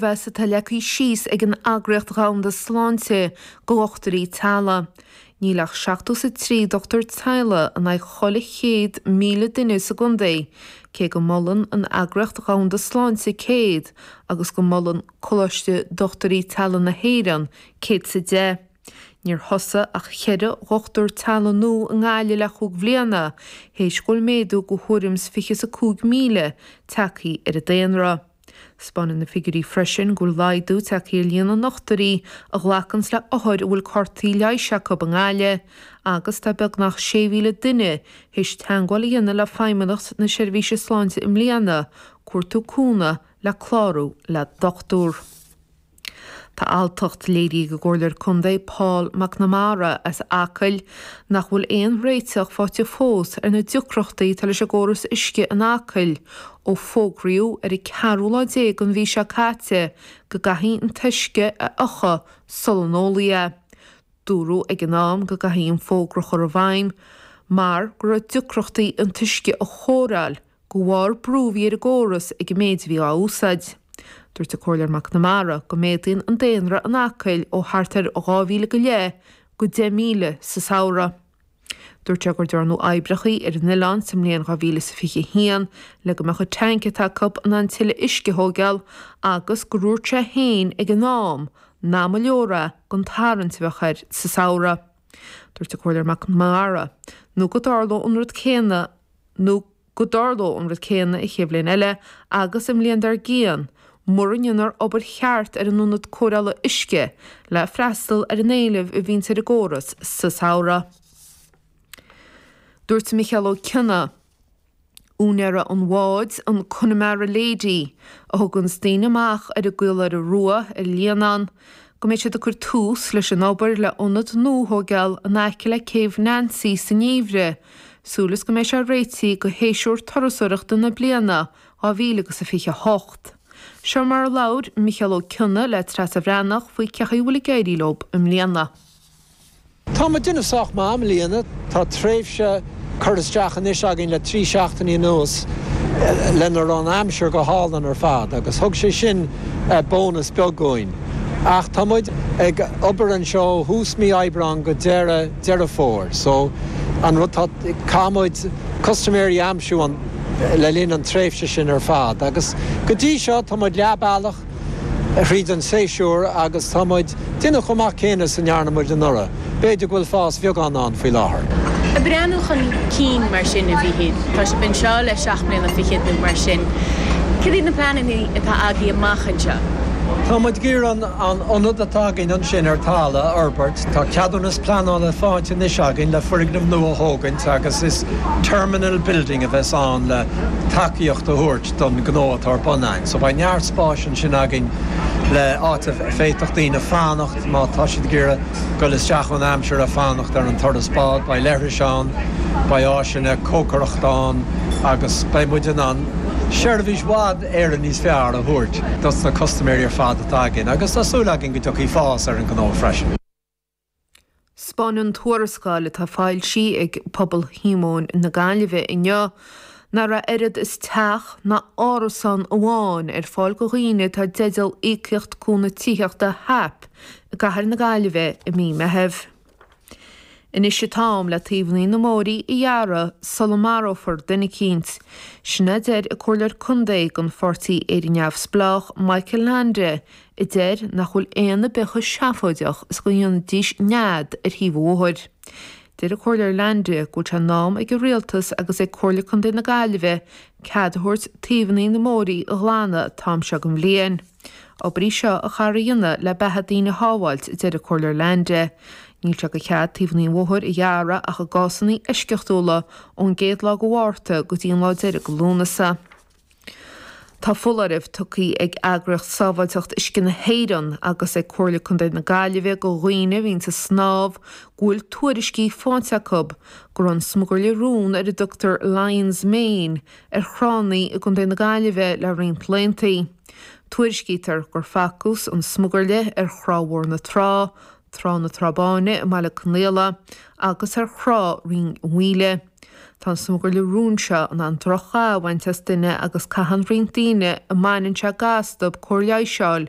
a bheadh is atá leagtha síos ag an Eagraíocht Dhomhanda Sláinte do dhochtúirí teaghlaigh. Níl ach seachtó is a trí dochtúir teaghlaigh in aghaidh chuile chéad míle duine sa gcontae, cé go molann an Eagraíocht Dhomhanda Sláinte céad agus go molann Coláiste Dochtúirí Teaghlaigh na hÉireann céad is a deich. Níor thosaigh ach cheithre dhochtúir teaghlaigh nua i nGaillimh le chúig bhliana théis go bhfuil méadú de thuairim is fiche is a cúig míle teagthaí ar an daonra. Taispeánann na figiúirí freisin go bhfuil laghdú tagtha ar líon na ndochtúirí a ghlacanns le hothair a bhfuil cártaí leighis acu i nGaillimh agus tá beagnach 6,000 duine théis teagmháil a dhéanamh le Feidhmeannacht na Seirbhíse Sláinte i mbliana, ag cuartú cúnamh le clárú le dochtúr. Tá alltacht léirithe ag an gComhairleoir Contae Paul McNamara as Acaill nach bhfuil aon réiteach faighte fós ar na deacrachtaí atá leis an gcóras uisce in Acaill ó fógraíodh ar an 14ú lá den mhí seo caite go gcaithfí an t-uisce a fhiuchadh sula n-ólfaí é. Dúradh ag an am go gcaithfí an fógra a chur i bhfeidhm mar go raibh deacrachtaí an t-uisce a chóireáil de bharr brú a bhí ar an gcóras ag an méid a bhí á úsáid. Dúirt an Comhairleoir McNamara go méadaíonn an daonra in Acaill ó thart ar 2,000 go leith go 10,000 sa samhradh. Dúirt sé gur dearnadh oibreacha ar an oileán sa mbliain 2021 le go mbeadh an teainc atá acu in ann tuilleadh uisce a thóigeáil agus gur dhúirt sé féin ag an am nach mba leor é don tarraingt a bheadh air sa samhradh. Dúirt an Comhairleoir McNamara go dtarlódh an rud céanna i go dtarlódh an rud céanna an chéad bhliain eile agus an bhliain dár gcionn, mura ndéanfar obair cheart ar an ionad cóireála uisce le freastal ar an éileamh a bhíonns ar an gcóras sa samhradh. Dúirt Micheál Ó Cionnaith, úinéir an bháid, an Connemara Lady, a thuganns daoine amach ar an gCaoláire Rua ar an Líonán, go mbeidh siad ag cur tús leis an obair le ionad nua a thóigeáil in aice le Céibh Nancy sa ngeimhreadh, Súil is go mbeidh sé réitithe do shéasúr turasóireachta na bliana dhá mhíle agus a fiche hocht. Seo mar a labhair Micheál Ó Cionnaith le Treasa Bhreathnach faoi cén chaoi a bhfuil ag éirí leo i mbliana. Tá muid ag déanamh sách maith i mbliana. Tá tréimhse curtha isteach anois againn le trí seachtainí anuas lena raibh an aimsir go hálainn ar fad agus thug sé sin bónas beag dhúinn. Ach tá muid ag obair anseo ó thús mí Aibreáin go deireadh. Deireadh Fómhair. So an rud tá, caithfidh muid custaiméirí a aimsiú an, le linn an tréimhse sin ar fad agus go dtí seo tá muid leath bealach thríd an séasúr agus tá muid déanamh chomh maith céanna is a ndearna muid anuraidh. B'fhéidir go bhfuil fás bheagán ann faoi láthair. Ag breathnú chun cinn mar sin a Mhichíl. Tá sibh anseo le seacht mbliana fichead nó mar sin. Cad iad na pleananna atá agaibh amach anseo? Tá muid ag iarraidh an ionad atá againn ansin ar talamh a fhorbairt. Tá ceadúnas pleanála faighte anois againn le foirgneamh nua a thógaint agus is 'terminal building' a bheas ann le tacaíocht a thabhairt don ghnó atá ar bun againn. So beidh neart spáis ansin againn le áit a bhféadfadh daoine fanacht má tá siad ag iarraidh goil isteach ón aimsir ag fanacht ar an turas báid. Beidh leithris ann, beidh áiseanna cócaireachta ann agus beidh muid in ann seirbhís i bhfad Éireann níos fearr a thabhairt dos na custaiméirí ar fad atá againn agus tá súil againn go dtiocfaidh fás ar an ngnó freisin. Spáineann an tuarascáil atá foilsithe ag Pobal Shíomóin na Gaillimhe inniu nach raibh oiread is teach ná árasán amháin ar fáil do dhaoine atá i dteideal Íocaíocht Cúnamh Tithíochta, HAP, i gCathair na Gaillimhe i mí Meitheamh. Anois an t-am le taobhannaí na mbóithrí a ghearradh sula marófar duine eicínt. Sin a deir an Comhairleoir Contae den Pháirtí Éire Neamhspleách, Michael Leainde, a deir nach bhfuil éan ar bith chomh seafóideach is go ndéanfaidís nead ar thaobh an bhóthair. Deir an Comhairleoir Leainde go bhfuil sé in am ag an Rialtas agus ag Comhairle Contae na Gaillimhe cead a thabhairt taobhannaí na mbóithrí a ghlanadh an t-am seo den bhliain. obair í seo a chaithfear a dhéanamh le beatha daoine a shábháilt, a deir an Comhairleoir Leainde. Níl sé de chead taobh an bhóthair a ghearradh ach i gcásanna eisceachtúla, ón gcéad lá de Mhárta go dtí an lá deiridh de Lúnasa. Tá foláireamh tugtha ag Eagraíocht Sábháilteacht Uisce na hÉireann agus ag Comhairle Contae na Gaillimhe do dhaoine a bhíonn ag snámh go bhfuil tuairiscí faighte acu go raibh an smugairle róin ar a dtugtar 'Lion's Mane' ar thránna i gContae na Gaillimhe le roinnt laethantaí. Tuairiscítear gur facthas an Smugairle ar Thrá Mhór na Trá, Trá na Trá Báine i mBaile Conaola, agus ar thrá Rinn Mhaoile. Tá an smugairle róin seo in ann droch-gha a bhaint as duine agus caitheann roinnt daoine a mbaineann sé ga astu cóir leighis a fháil